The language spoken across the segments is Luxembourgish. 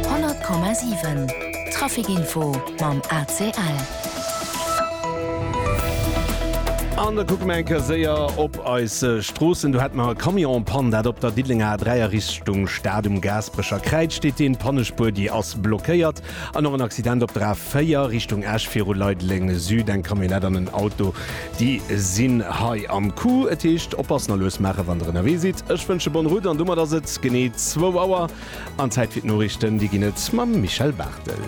100,7 Trafic Info mam ACL. An da kucke mer eng Kéier séier op eis Stroossen. Do hätte mer e Camion-Pann, dat op der Diddelenger A3 a Richtung Stad um Gaasperecher Kräiz steet. Dee Pannespuer, déi ass blockéiert. An och en Accident op der A 4 Richtung Esch viru Leideleng Süd. Eng Camionnette an en Auto, déi sinn hei am Coup. Et heescht oppassen a lues maachen, wann der ënnerwee sidd. Ech wënsche bonne route an domat ass et genee zwou Auer an Zäit fir d'Noriichten. Déi ginn et mam Michel Barthel.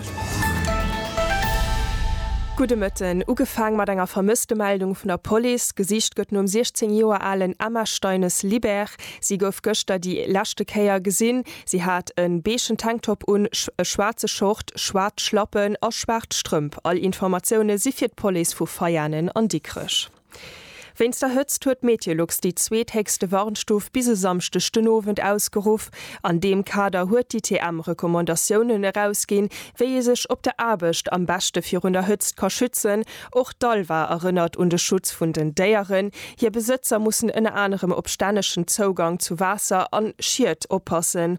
Gudde Mëtten. Ugefaang mat enger Vermësstemeldung vun der Police. Gesicht gëtt nom 16 Joer alen Emma Steines-Libert. Si gouf gëschter déi leschte Kéier gesinn. Si hat en beeschen Tanktop un, e schwaarze Short, schwaarz Schlappen a schwaarz Strëmp. All Informatioune si fir d'Police vu Veianen an Dikrech. Wéinst der Hëtzt huet Meteolux déi zweethéchste Warnstuf bis e Samschdeg den Owend ausgeruff. An deem Kader huet d'ITM Recommandatiounen erausginn, wéi ee sech op der Aarbecht am beschte virun der Hëtzt ka schützen Och d'ALVA erënnert un de Schutz vun den Déieren. Hir Besëtzer mussen ënner anerem op stännegen Zougang zu Waasser an Schied oppassen.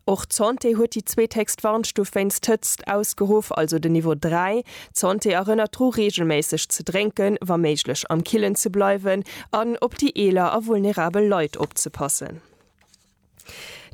Och d'Santé huet déi zweethéchst Warnstuf wéinst Hëtzt ausgeruff, also den Niveau 3. D'Santé erënnert dru reegelméisseg ze drénken, wa méiglech am Killen ze bleiwen an op déi eeler a vulnerabel Leit opzepassen.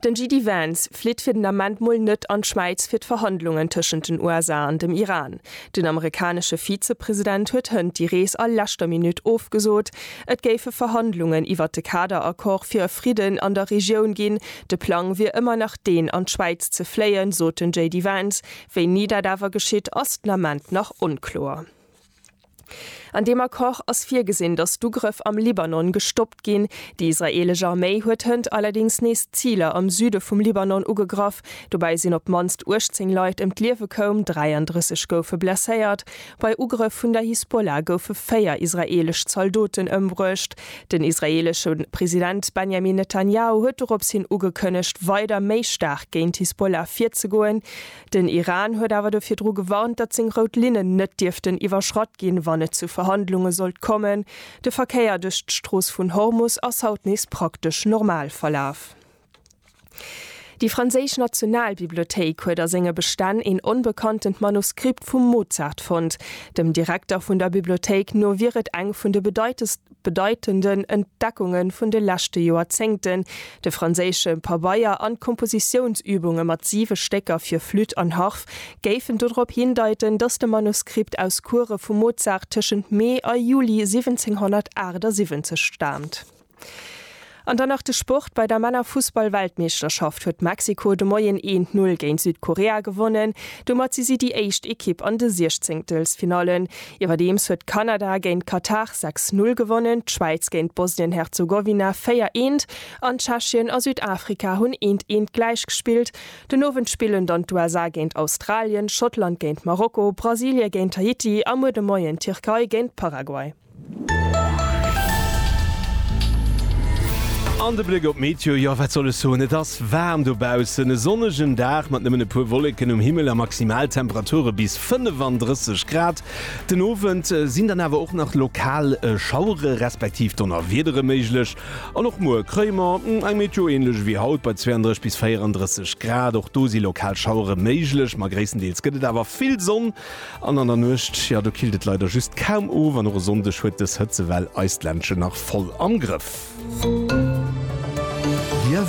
Den JD Vance flitt fir den Ament mol net an d'Schwäiz fir d'Verhandlungen tëschent den USA an dem Iran. Den amerikanesche Vizepresident huet hënt déi Rees a leschter Minutt ofgesot. Et géife Verhandlungen iwwert de Kaderaccord fir e Fridden an der Regioun ginn. De Plang wier ëmmer nach deen, an d'Schwäiz ze fléien, sot den JD Vance. Wéini dat awer geschitt, ass den Ament nach onkloer. An deem Accord ass virgesinn, datt d'Ugrëff am Libanon gestoppt ginn. Déi israeelesch Arméi huet hënt allerdéngs nees Ziler am Süde vum Libanon ugegraff. Dobäi sinn op d'mannst 18 Leit ëm d'Liewe koum, 33 goufe blesséiert. Bei Ugrëff vun der Hisbollah goufe véier israeelesch Zaldoten ëmbruecht. Den israeelesche President Benjamin Netanjahu huet doropshin ugekënnegt, weider méi staark géint d'Hisbollah virzegoen. Den Iran huet awer dofir dru gewarnt, datt seng rout Linnen net dierften iwwerschratt ginn, wann et zu Verhandlunge sollt kommen. De Verkéier duerch d'Strooss vun Hormus ass haut nees praktesch normal verlaf. Déi franséisch Nationalbibliothéik huet a senge Bestänn een onbekanntent Manuskript vum Mozart fonnt. Dem Direkter vun der Bibliothéik no wier et eng vun de bedeitenden Entdeckunge vun de leschte Joerzéngten, de franséische Pabeier an d'Kompositiounsübunge mat siwe Stécker fir Flütt an Harf géifen dodrop hindeiten, datt de Manuskript aus Courë vum Mozart tëschent Mee a Juli 1778 staamt. An dann nach de Sport, Bei der Männerfussball-Weltmeeschterschaft huet Mexiko de Moien een Null géint Südkorea gewonnen. Domat si si déi éischt Ekipp an de Siechzéngtelfsfinallen. Iwwerdeems huet Kanada géint Katar sechs Null gewonnen, d'Schwäiz géint Bosnien-Herzegowina véier eent an Tschechien a Südafrika hunn eent eent gläich gespillt. Den Owend spillen dann d'USA géint Australien, Schottland géint Marokko, Brasilie géint Haiti a muer de Moien d'Tierkei géint Paraguay. An de Bléck op d'Meteo, jo wat soll ech soen, et ass waarm dobaussen, e sonnegen Dag mat nëmmen e puer Wolleken um Himmel a Maximaltemperature bis 35 Grad. Den Owend sinn dann awer och nach lokal Schauere respektiv Donnerwiedere méiglech an och muer kréie mer eng Meteo änlech ewéi haut bei 32 bis 34 Grad. Och do si lokal Schauere méiglech, ma gréisstendeels gëtt et awer vill Sonn. An an der Nuecht, jo, do killt et leider just kaum of an och e Sonndeg huet dës Hëtzewell eis d'Ländchen nach voll am Grëff. Liewe